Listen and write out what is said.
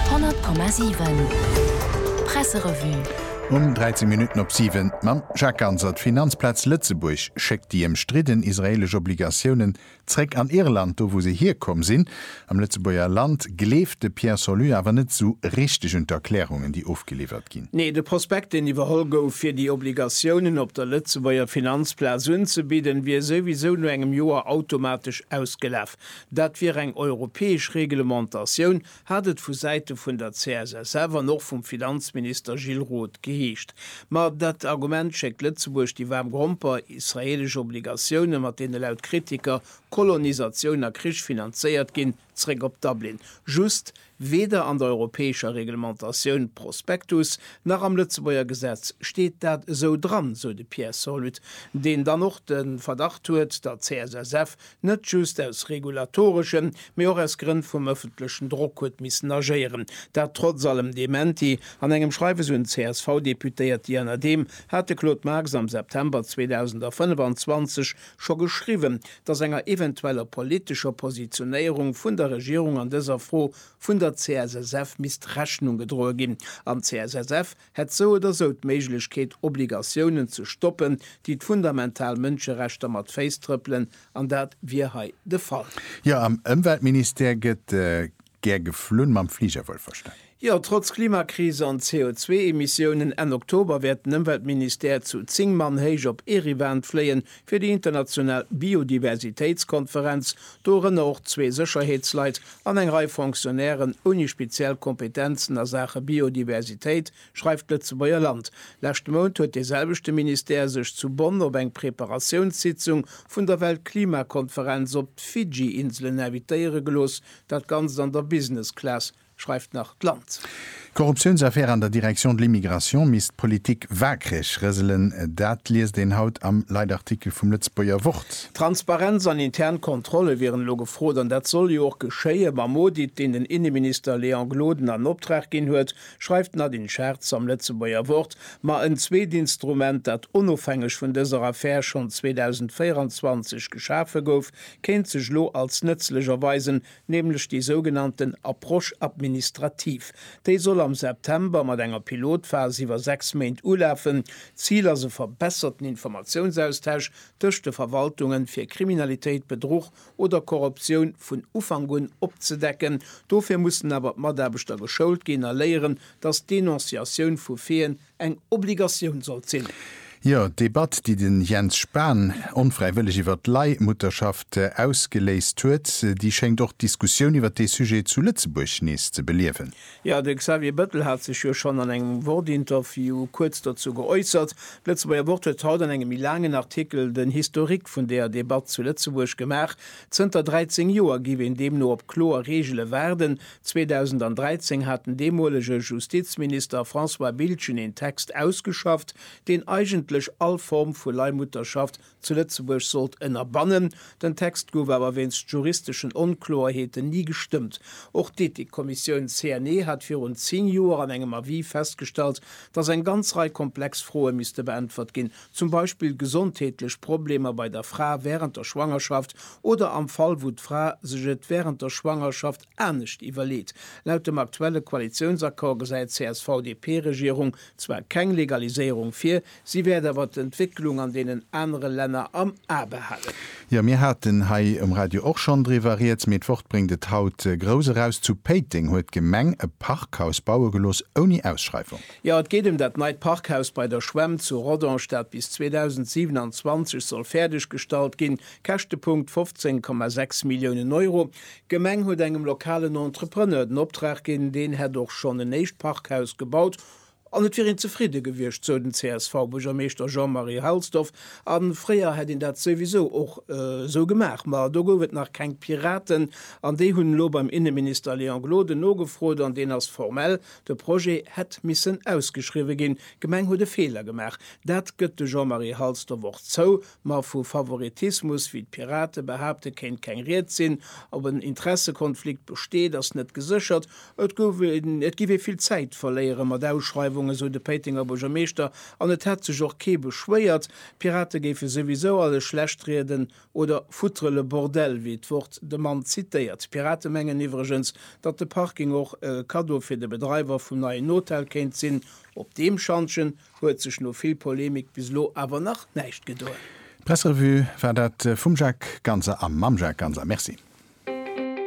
100,7 Presserevue. Um 13 Minutten op 7 mam Jacques Ganser. D'Finanzplaz Lëtzebuerg schéckt déi ëmstridden israeelesch Obligatiounen zréck an Irland, do wou se hierkomm sinn. Am Lëtzebuerger Land gleeft de Pierre Solus awer net esou richteg un d'Erklärungen, déi ofgeliwwert ginn. Nee, de Prospekt, deen iwwerholl gouf, fir déi Obligatiounen op der Lëtzebuerger Finanzplaz unzebidden, wier souwisou no engem Joer automatesch ausgelaf. Dat wier eng europäesch Reglementatioun, hat et vu Säite vun der CSSF an och vum Finanzminister Gilles Roth geheescht. Ma dat Argument schéckt Lëtzebuerg déi waarm Gromper, israeelesch Obligatiounen, mat deene laut Kritiker Kolonisatioun a Krich finanzéiert ginn, zeréck op Dublin. Just, Weder an der europäescher Reglementatioun Prospectus nach am Lëtzebuerger Gesetz steet dat esou dran, sou de Pierre Solud, deen dann och de Verdacht huet, datt d'CSSF net just aus regulatoreschen, mee och aus Grënn vum ëffentlechen Drock huet missen agéieren. Dat trotz allem Dementi an engem Schreiwes un d'CSV-Deputéiert. Iernadem hat de Claude Marx am September 2025 scho geschriwwen, dass enger eventueller politescher Positionéierung vun der Regierung an dëser Fro vun der CSSF misst Rechnung gedroe ginn. An d'CSSF hätt sou oder sou d'Méiglechkeet, Obligatiounen ze stoppen, déi d'fundamental Mënscherechter mat Féiss trëppelen, an dat wier hei de Fall. Jo, am Ëmweltministère gëtt Gär geflunn, mam Fliger wuel verstan. Jo, trotz Klimakris an CO2-Emissiounen, Enn Oktober wäert den Ëmweltministère zu zéng Mann héich op Erivan fléien, fir déi international Biodiversitéitskonferenz, dorënner och zwee Sécherheetsleit an eng Rei Fonctionnairen ouni speziell Kompetenzen a Saache Biodiversitéit, schreift d'Lëtzebuerger Land. Leschte Mount huet dee selwechte Ministère sech zu Bonn op eng Preparatiounssitzung vun der Weltklimakonferenz op d'Fidschi-Inselen invitéiere gelooss, Dat Ganzt an der Business Class, schreift nach d'Land. Korruptiounsaffär an der Direction de l'immigration misst d'Politik waakreg rëselen, dat liest een haut am Leitartikel vum Lëtzebuerger Wort. Transparenz an intern Kontrolle wieren elo gefrot an dat soll jo och geschéie mam Audit, deen den Inneminister Léon Gloden an Optrag ginn huet, schreift d'Nadine Schartz am Lëtzebuerger Wort. Ma en zweet Instrument, dat onofhängeg vun dëser Affär schonn 2024 geschafe gouf, kéint sech elo als nëtzlech erweisen, nämlech déi sougenannten Approche administrative. Déi soll am September mat enger Pilotphas iwwer sechs Méint ulafen. Zil ass e verbesserten Informatiounsaustausch tëscht de Verwaltungen, fir Kriminalitéit, Bedruch oder Korruptioun vun Ufank un opzedecken. Dofir mussen awer d'Mataarbechter geschoult ginn a léieren, dass d'Denonciatioun vu Feen, eng Obligatioun sollt sinn. Jo, d'Debatt, déi den Jens Spahn onfräiwëlleg iwwert d'Leihmutterschaft ausgeléist huet, déi schéngt och d'Diskussioun iwwert dee Sujet zu Lëtzebuerg nees ze beliewen. Jo, de Xavier Bettel hat sech jo schonn an engem Wort-Interview kuerz dozou geäussert. D'Lëtzebuerger Wort huet haut an engem méi laangen Artikel den Historique vun deeër Debatt zu Lëtzebuerg gemaach. Zënter 13 Joer giff een deemno op kloer Reegele waarden, 2013 hat den deemolege Justizminister François Biltgen een Text ausgeschafft, deen eigentlech all Form vu Leihmutterschaft zu Lëtzebuerg sollt ënnerbannen. Den Text gouf awer wéinst juristeschen Onkloerheeten ni gestëmmt. Och d'Ethikkommissioun CNE hat virun 10 Joer an engem Avis festgestallt, datt eng ganz Rei komplex Froe misste beäntwert ginn, zum Beispill gesondheetlech Problemer bei der Fra wärend der Schwangerschaft oder am Fall wou d'Fra sech et wärend der Schwangerschaft Anescht iwwerleet. Laut dem aktuelle Koalitiounsaccord gesäit d'CSV-DP-Regierung zwar keng Legaliséierung vir, si wäert awer d'Entwécklung an deenen anere Länner am A behalen. Jo, mir haten hei um Radio och schonn driwwer Rieds, mee d'Wort bréngt et haut grouss eraus, Zu Péiteng huet d'Gemeng e Parkhaus baue gelooss ouni Ausschreiwung. Jo, et geet ëm dat neit Parkhaus bei der Schwämm zu Rodange, dat bis 2027 soll fäerdeggestallt ginn. Käschtepunkt, 15,6 Milliounen Euro. D'Gemeng huet engem lokalen Entrepreneur den Optrag ginn, deen hätt och schonn en éischt Parkhaus gebaut an et wier een zefridde gewiescht, sou den CSV-Buergermeeschter Jean-Marie Halsdorf. A fréier hätt een dat souwisou och esou gemaach, ma do gouf et nach keng Piraten an déi hunn elo beim Inneminister Léon Gloden nogefrot an deen ass formell. De Projet hätt missen ausgeschriwwe ginn. D'Gemeng huet e Feeler gemaach, dat gëtt de Jean-Marie Halsdorf och zou. Ma vu Favoritismus, wéi d'Pirate behaapten, kéint keng Rieds sinn. Ob en Interessekonflikt besteet, ass net geséchert. Et giff ee vill Zäit verléieren mat Ausschreiwungen, sou de Péitenger Buergermeeschter, an et hätt sech och kee beschwéiert. D'Pirate géife souwisou alles schlechtrieden oder foutre le bordel, wéi d'Wort de Mann zitéiert. D'Pirate mengen iwwregens, datt de Parking och e Kaddo fir de Bedreiwer vum neien Hotel kéint sinn. Op deem Schantjen Huet sech no vill Polemik bis elo awer nach näischt gedoen. D'Pressrevue war dat vum Jacques Ganser a mam Jacques Ganser. Merci.